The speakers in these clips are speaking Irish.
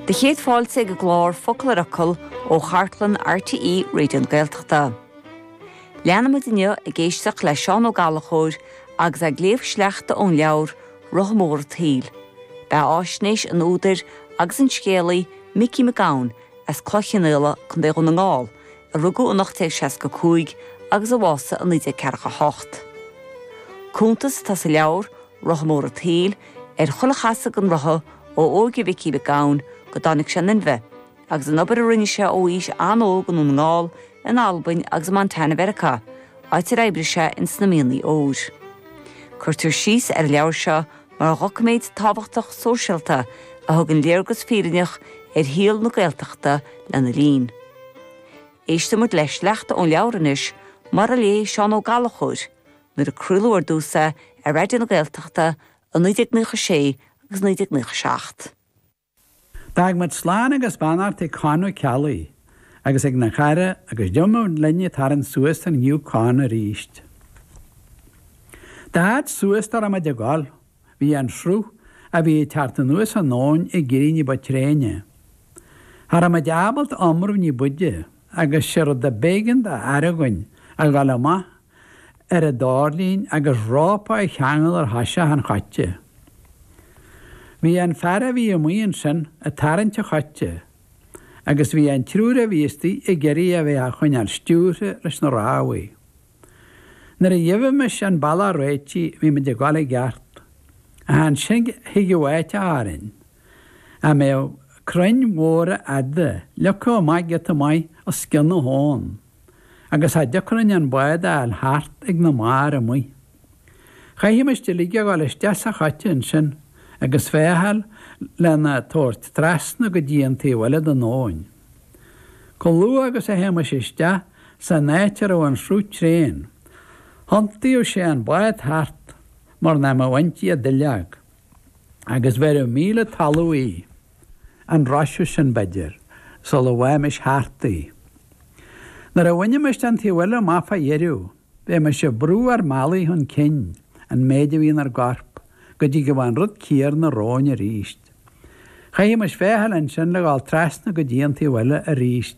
Do chéad fáilte ag an gclár Focal ar Fhocal ó chartlann RTÉ Raidió na Gaeltachta. Leanfaimid inniu ag éisteacht le Seán Ó Gallchóir agus é ag léamh sleachta ón leabhar Rotha Mór an tSaoil. Beathaisnéis an údair agus an scéalaí Micí Mac Gabhann as Cloich Chionnaola, Co. Dhún na nGall, a rugadh in 1865 agus a bhásaigh in 1948. Cuntas atá sa leabhar Rotha Mór an tSaoil, ar chuile chasadh an rotha ó óige Mhicí Mhic Gabhann go dtáinig sé in inmhe, agus an obair a rinne sé ó aois an-óg i nDún na nGall, in Albain agus i Montana Mheiriceá, áit ar oibrigh sé in sna mianaí óir. Cuirtear síos ar an leabhar seo mar dhoiciméad tábhachtach sóisialta a thugann léargas fírinneach ar shaol na Gaeltachta lena linn. Éistfidh muid le sleachta ón leabhar anois, mar a léigh Seán Ó Gallchóir, Nuair a craoladh ar dtús é ar Raidió na Gaeltachta i 1996 agus 1997. D'fhág muid slán agus beannacht ag Conn Ó Ceallaigh agus ag na chairde agus d'imigh linn ag tarraingt suas an Yukon arís. Dá fhad suas dá raibh muid ag dul. Bhí an sruth a bhí ag teacht anuas an abhainn ag éirí ní ba tréine. Cha rabh muid ábalta iomramh ní b'fhaide, agus sé rud a b'éigean do fhear againn a dhul amach ar an doirling agus rópa a cheangal ar thoiseach an choite. Bhí an fear a bhí amuigh ansin ag tarraingt an choite, agus bhí an triúr a bhí istigh ag iarraidh a bheith á choinneáil stiúrtha leis na rámhaí. Nuair a gheibhimis an bealach réitithe bhímid ag dul i gceart, ach ansin thigeadh áit orainn a mbeadh crainn mhóra fhada ligthe amach giota maith os cionn na habhann agus cha dtiocfadh linn an bád a fháil thart ag na mbarr amuigh. Chaithimis uilig a dhul isteach sa choite ansin agus féacháil lena tabhairt trasna go dtí an taobh eile den abhainn. Chomh luath agus a théimis isteach san áit a raibh an sruth tréan, thiontaíodh sé an bád thart mar nach mbeadh inti ach duilleog, agus bheireadh míle talamh í, an roiseadh sin, b'fhéidir, sula bhfaighimis thart í. Nuair a bhainimis an taobh eile amach fá dheireadh, Bhímis ag brú ár mbealaigh chun cinn, an méid a bhí inár gcorp, go dtigeadh an rud céanna romhainn arís. Chaithfimis féacháil ansin le dhul trasna go dtí an taobh eile arís.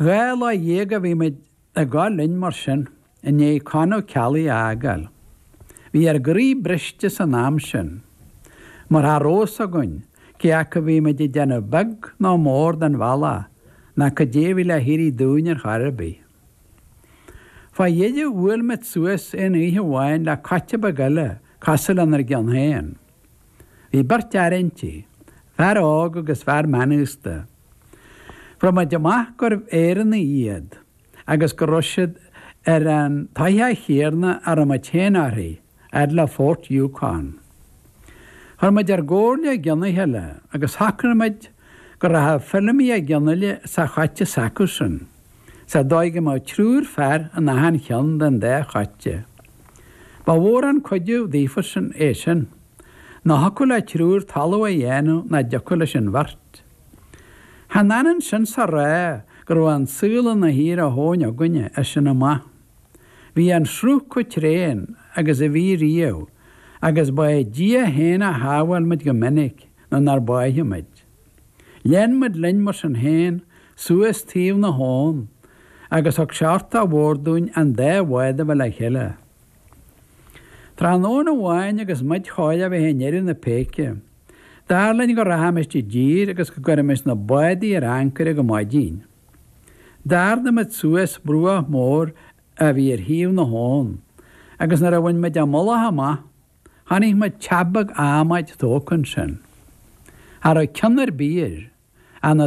Dhá lá dhéag a bhí muid ag gabháil linn mar sin, i ndiaidh Con Ó Ceallaigh a fhágáil. Bhí ár gcroí briste san am sin. Mar cha rabh a fhios againn, cé acu a bhí muid ag déanamh beag nó mór den bhealach, ná cad é a bhí le héirí dúinn ar chor ar bith. Fá dheireadh, bhuail muid suas aon oíche amháin le coite beag eile cosúil lenár gceann féin. Bhí beirt fhear inti, fear óg agus fear meánaosta. Fuair muid amach gurbh Éireannaigh iad, agus go raibh siad ar an toisc chéarna a raibh muid féin uirthi fhad le Fort Yukon. Chuir muid ar gcomhairle i gceann a chéile agus shocraigh muid go rachadh Feilimí Mac Fhionnaile sa choite s'acusan, sa dóigh go mbeadh triúr fear in achan cheann den dá choite. Ba mhór an cuidiú daofasan é sin. Nó thiocfadh le triúr talamh a dhéanamh nach dtiocfadh leis an bheirt. Chan ionann sin is a rá go raibh an saol ina shuí ar a thóin againne as sin amach. Bhí an sruth chomh tréan agus a bhí riamh agus ba é Dia féin a shábháil muid go minic nuair nár báitheadh muid. Lean muid linn mar sin féin suas taobh na habhann agus thug sé uchtach mhór dúinn an dá bhád a bheith le chéile. Tráthnóna amháin agus muid chóir a bheith i ndeireadh na péice, Dar linn go rachaimis i dtír agus go gcuirfimis na bádaí ar ancaire go maidin. D'ardaigh muid suas bruach mór a bhí ar thaobh na habhann agus nuair a bhain muid an mullach amach chonaic muid teach beag adhmaid tógtha ansin. Cha raibh ceann ar bith air ach na